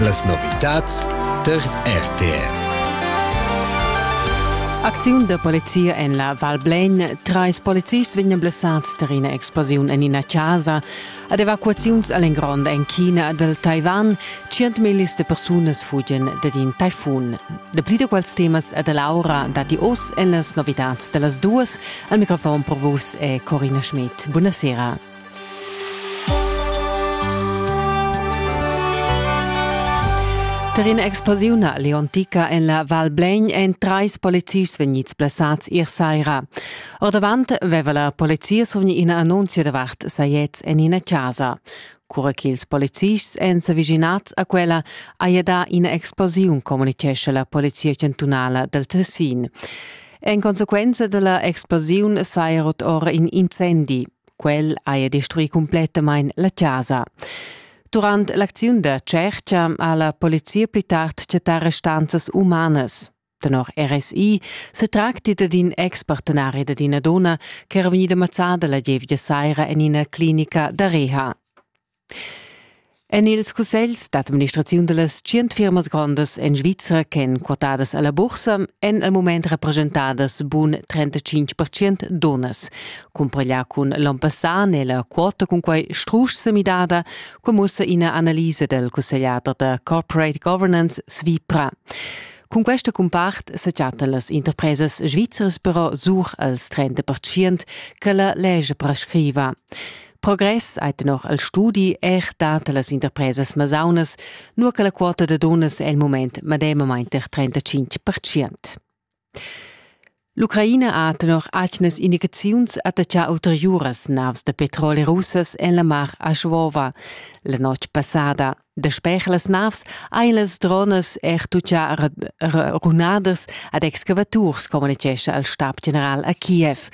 Las novitads tar RTR. Acziun da polizia en la Val Blegn. Trais polizists vegnan blessads tar ina explosiun en ina chasa. Ad evacuaziuns all'engrond en China dal Taiwan. 100.000 de persunas fugen dad in taifun. Dapli da quels temas e da Laura datti oz en las novitads da las duas. Al microfon per vus è Corina Schmidt. Buonasera. Per in'explosiun leontica en la Val Blegn èn trais polizists vegnids blessads ier saira. Ordavant aveva la polizia survgni ina annunzia davart sajets en ina chasa. Cura ch'ils polizists èn s'avischinads a quella, haja dà ina explosiun, communitgescha la polizia chantunala dal Tessin. En consequenza da la explosiun saja rot ora in incendi. Quel haja destruì cumplettamain la chasa. Durant l'acziun da tschertga ha la polizia pli tard chattà restanzas umanas. Tenor RSI se tracti dad in expartenari dad ina donna ch'era vegnida mazzada la gievgia saira en ina clinica da reha. En ils cussegls d'administraziun da las tschient firmas grondas en Svizra ch'èn quotadas a la bursa èn al mument represchentadas bun 35 percent dunnas. Cumpareglià cun l'onn passà n'è la quota cunquai strusch sa midada, quai mussa ina analisa dal cussegliader da Corporate Governance Svipra. Cun questa cumpart sa chattan las interpresas svizras però sur als 30 percent che la legge prescriva. Progress ei tenor el studi er dat las interpresas masaunas, nur che la quota da dunnas è il moment medemamain per 35 percent. L'Ucraina ha tenor atgnas indicaziuns attacchà ulteriuras navs da petrol russas en la mar a Schwova la notg passada. Dasper las navs ein las dronas er tuttà runadas ad excavaturs, communitgescha il stab general a Kiev.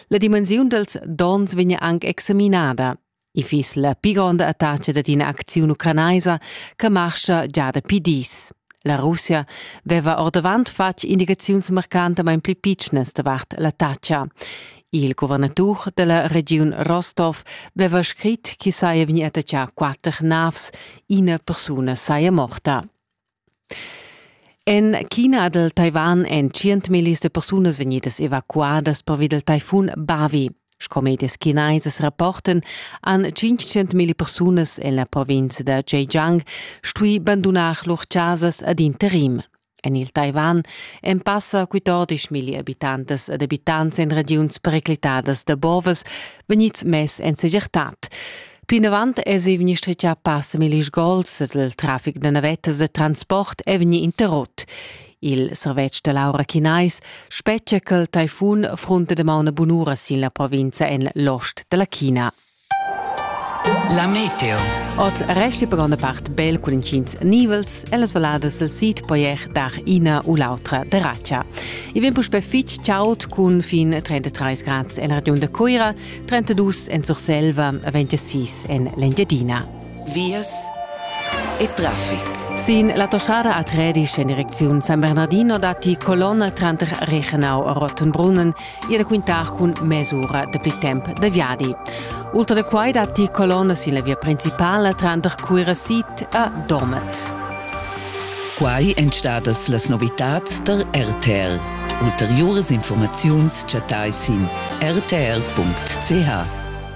La dimensiun dals dons vegn anc examinada. I fiss la pi gronda attacca dad ina acziun ucranaisa che marscha già dapi dis. La Russia veva ordavant fatg indicaziuns marcantamain pli pitschnas davart l'attacca. Il guvernatur della regiun Rostov veva scrit che saia vegni attaccà quatter navs, ina persuna saia morta. En China dal Taiwan èn tschientmillis de persunas vegnidas evacuadas pervi del taifun Bavi. Sco medias chinesas rapporten han 500.000 persunas en la provincia da Zhejiang stui bandunar lur casas ad interim. En il Taiwan èn passa quitodisch milli abitantas ed abitants en regiuns periclitadas da bovas vegnids mess en segirtad. Plinavant èsi vegnì stritgà passa milli sgols ed il traffic da navettas e transport è vegnì interrott. Il servetsch da l'aura chinais spetgia ch'il taifun fronta damaun bunura sin la provinza en l'ost da la China. La meteo. Oz resti per gronda part bel cun intgins nivels e las valadas sil sid poier dar ina u l'autra deracia. I vegn puspè fitg chaud cun fin 33 grads en region da Cuira, 32 en Surselva e 26 en l'Engiadina. vias e traffic. Sin la toschada a Tredisch en direcziun San Bernardino datti colonne tranter Reichenau e Rottenbrunnen ir da quintar cun mesura dapli temp da viadi. Ultra da quai datti colonne sin la via principala tranter Cuira Sid a Domet. Quai èn stadas las novitads da RTR. Ulteriuras informaziuns chattai sin rtr.ch.